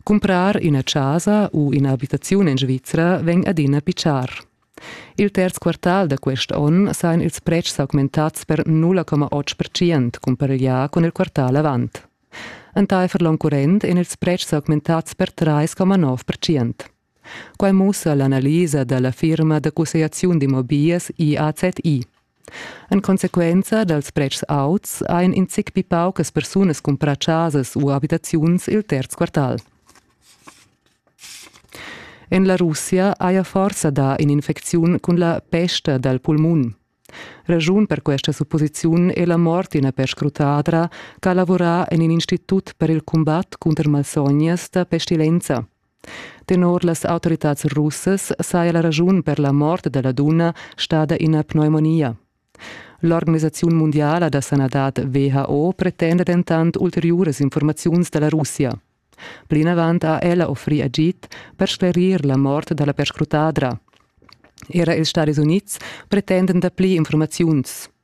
Cumprar üna chasa u üna abitaziun in Svizra vegn adina pitschar. Il terz quartal da quest onn sajan ils pretschs augmentats per 0,8% cumpareglià cun il quartal avant. Entaifer l'onn current èn ils pretschs augmentats per 3,9%. Quai mussa l'analisa da la firma da cussegliaziun d'immobiglias IAZI. En consequenza dals pretschs auts ein in zic pi paucas persunas cumprà chasas u abitaziuns il terz quartal. En la Russia haja forsa dà in'infecziun cun la pesta dal pulmun. Raschun per questa supposiziun è la mort d'ina perscrutadra che ha lavurà en in institut per il cumbat cunter malsognas da pestilenza. Tenor las autoritads russas saja la raschun per la mort della dunna stada ina pneumonia. L'organisaziun mundiala da sanadad WHO pretenda dentant ulteriuras informaziuns dalla Russia. Plinavant ha ella offrì agid per sclerir la mort dalla perscrutadra. Era ils Stadis Unids pretendan dapli informaziuns.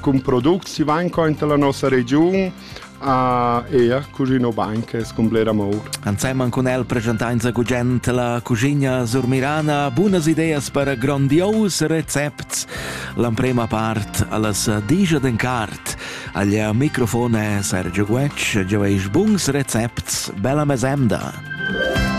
cun products si van conta la nossa regiun a ea Cusino Bank es complera mour. Anseman cun el presentainza gugent la cuschigna surmirana, bunas ideas per grondios recepts, l'emprema part allas digia den cart. Aglia microfone Sergio Guec, gioveis buns recepts, bella mesemda!